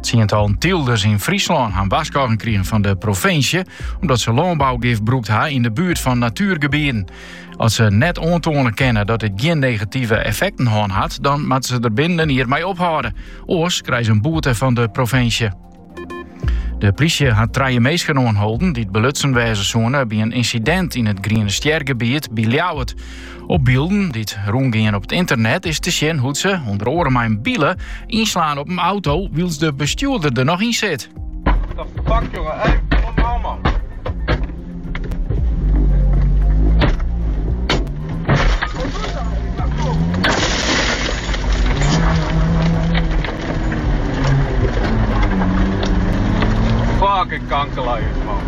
Tsientallen tylders in Fryslân han warskôging krigen fan de provinsje omdat se lânbougif brûkt ha yn de buert fan natuergebieten. As se net oantoane kinne dat dit gjin negative effekten hân hat, dan moatte se der binnen in jier mei ophâlde. Oars krije se in boete fan de provinsje. De plysje hat trije minsken oanholden dy't belutsen wêze soene by in ynsidint yn it Griene Stjer-gebiet by Ljouwert. Op bylden dy't rûngean op it ynternet is te sjen hoe't se, ûnder oare mei in bile, ynslaan op in auto wylst de bestjoerder der noch yn sit. What the fuck jongen, hey, kom nou man. Fucking kankerlui man.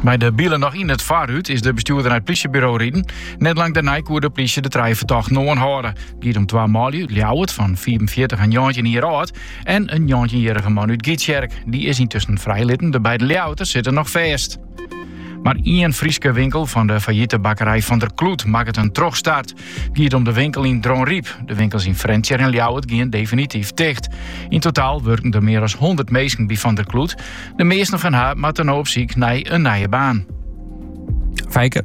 Mei de bile noch yn it foarrút is de bestjoerder nei it plysjeburo riden. Net lang dêrnei koe de plysje de trije fertochten oanhâlde. Giet om twa manlju út Ljouwert fan 45 en 19 jier âld en in 19-jierrige man út Gytsjerk. Dy is yntusken frijlitten, de beide Ljouwerters sitte noch fêst. Mar ien Fryske winkel fan de failliete bakkerij Van der Kloet makket in trochstart. Giet om de winkel yn Dronryp. De winkels yn Frjentsjer en Ljouwert gean definityf ticht. Yn totaal wurken der mear as 100 minsken by Van der Kloet. De measten fan har moatte no op syk nei in nije baan. Fijke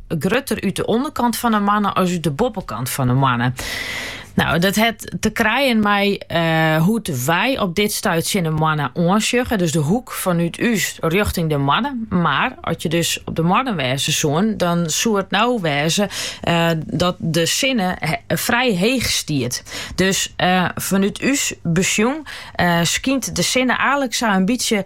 grutter út de ûnderkant fan 'e moanne as út de boppekant fan 'e moanne. Nou, dat het te krijen mei uh, hoe't wy op dit stuit tsjin de moanne oansjugge. Dus de hoek fanút ús rjochting de moanne. Mar at je dus op de moanne wêze soene, dan soe it nou wêze eh, dat de sinne frij heech stiet. Dus eh, fanút ús besjoen skynt de sinne eigenlik sa'n bytsje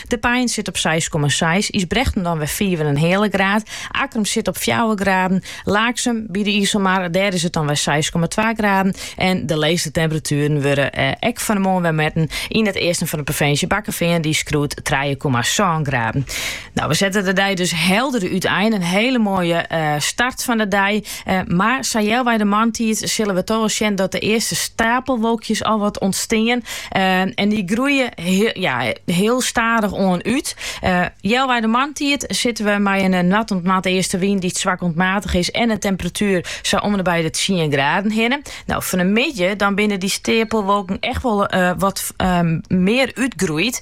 De Pein sit op seis komma seis, Ysbrechtum dan wer fiif en in heale graad. Akkrum sit op fjouwer graden. Laaksum by de Iselmar, dêr is it dan wer seis komma twa graden. En de leechste temperatueren wurde eh, ek fan 'e moarn wer metten yn it easten fan de provinsje. Bakkefean dy skoart trije komma sân graden. Nou, we sette de dei dus helder uitein. In hiele moaie eh, start fan de dei. Mar sa healwei de moarntiid sille we toch wol sjen dat de earste stapelwolkjes al wat ûntstean. En dy groeie hiel stadich oan út. Healwei de moarntiid sitte we mei in noard oant noardeastewyn dy't swak oant maatich is en in temperatuer sa om-ende-by de tsien graden hinne. No, fan 'e middei dan binne dy steapelwolken echt wol wat mear útgroeid.